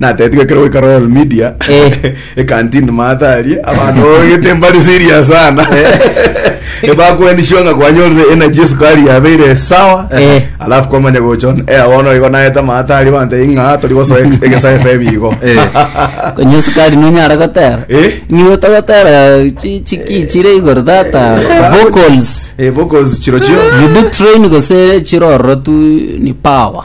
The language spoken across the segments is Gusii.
Natetigwe ekero goika Royal Media Eh. ekantini Martha arie abanto babagete mbari serious sana ebakwenishiwa nga kwanyorire energy esukari yabeire sawa Eh. alafu kwamanya gochon eh abono igo naeta Martha arie abanto ing'a tori gosoa ex- egesa FM igo Eh. Onye esukari nonyara gotera Eh? nigo togotera chi- chiki chire igoro tata vocals eh vocals chiro chio you do train gose chirororo tu ni power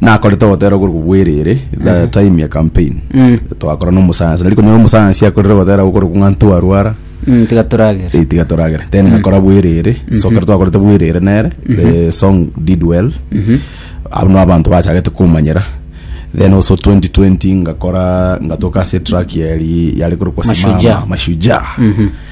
Nakorete ogotera korwa bwerere the time ya campaign twakora na omusayansi nari konyora omusayansi akorire ogotera gokorokwa ng'a ntwarwara Mm, tiga turagere eh, tiga toragere then ngakora bwerere so kero twakorete bwerere nere the song did well abo no abanto bachagete komanyera then also 2020 ngakora ngatoka ase track yari yari korokwa Mashujaa. simama mashujaa